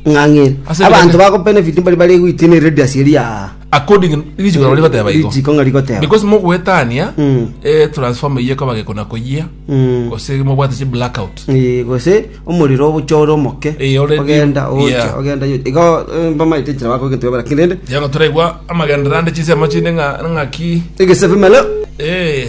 Ng'ang'iri. Ase Abanto ebinene. bagobenefit mbari bare goitina eradius eria aa. according richiko nabo rigoteba igo Richiko ng'a rigoteba. because mogoetania Mm. eh, transformer iye ekoba gekona koyia Mm. gose mobwate chi blackout Eh, gose omorero obochore omoke Eh, already- ogenda ocha yeah. ogenda yo- igo eh, mbamaete enchera bakogenteba bara kirende yanga toraigwa amagendera ande chisemo chinde ng'a- ng'aki egesebe malo eh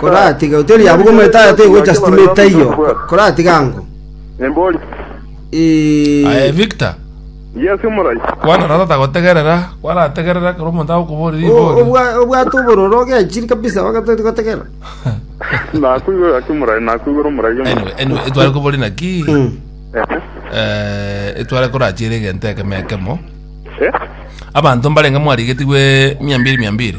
Koratiga hoteli yabo goma etaya tegocha sitima etaiyo, koratiga ango. Aye Victor, kwana na tata gotegerera, kwarategerera ekero omonto agokoboria ribori. Obwa- obwate obororo ogechiri kabisa ogatoti gotegera nakwigora ake murai nakwigora omurai omo Anyway, anyway, etware kobori naki eh, etware korachiere egento ekemo ekemo Eh? abanto mbarenge mwarigetigwe mia mbiri mia mbiri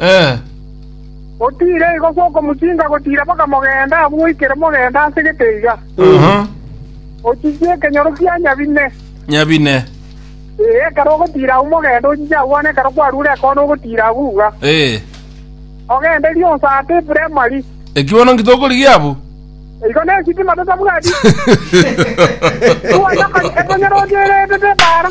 Ee. Gotiira igo gw'okomochiika gotiira mpaka mogenda abwo goikera mogenda ase getaiga. Aha. Ochiche ekenyoro kia nyabine. Nyabine. Ee, ekero ogotiira agwo mogenda ochiche agwo bono ekero kwarure ekoona ogotiira agwo iga. Ee. Ogende rionsi ata eprimary. Eki bono nki tokorigia abwo? Igo nesitima totabwati. Twanyoka ekonyera ocheretete ebara.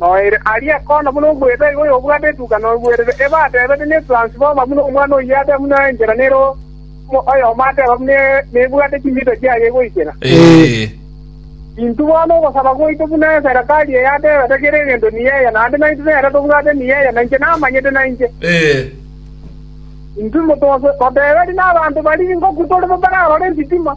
Noere aria kona buna omoedo iga oyobwate etuka noigwerere ebe atebete nesuansi boma buna omwana oyiate buna enchera nere oyomo ateba buna nebwate chimita chiaye goikera. Intwe bono ogosaba gwaito buna eserekari eye atebete kera egento nigo eye, naende naintwe nere tobwate nigo eye, na inche namanyete nainche. Intwe moteberi nabanto baria ingoku tore bo bararore esitima.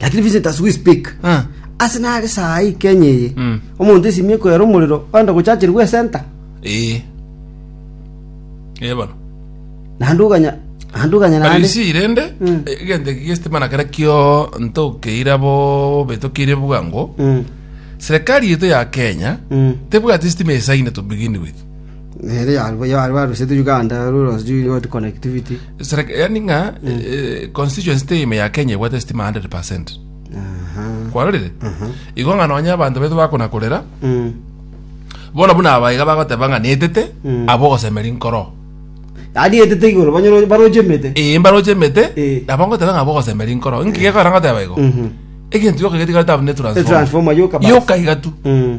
lakini Vincent as we speak Ah. ase nare saa hii Kenya eye Mm. omonto esimie koyera omorero ogenda gochacherigwa esenta Eh. Eh bono. naende oganya naende oganya naende Arisi irende Mm. egento eki gestima na kera kio ntokeira bo betokire bwango Mm, serikali yetu ya Kenya mm. tebwati stima esaine to begin with yaani ng'a eh, constituency teime ya kenya ebwate sitima 100 percent kwarorire igo ng'a nonya abanto baito bakona korera bono buna abaiga bagoteba ng'a netete abo ogosemeri nkoro yaani etete igoro banyoro- baroche emete ee mbaroche emete Eh. nabo ngoteba ng'a abo ogosemeri nkoro nki gekogera ngoteba igo egento gioka getigarete abwo ne transformer. transformer yoka basi. yoka iga tu Mm.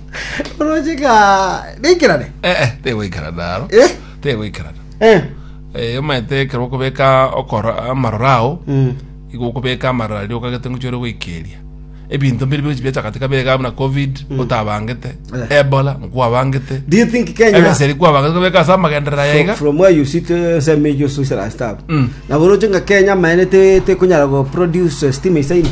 orocheka neikerane Eh, eh, tegoikarana aro Eh? tegoikarana Eh. Eh, omanyete ekero okobeka okora amaroro ao Mm. igo okobeka amaroro aria okagete ngochi ore goikeria ebinto mbiri bigochi biachakate kabega buna covid otabangete Eh. ebola nkwabangete do you think kenya ebeseri kwabangete kobeka ase amagenderera from, yaiga from where you sit uh, say me you so shall I stop Mm. na boroche nga kenya maene te te kunyara go produce uh, steam isaini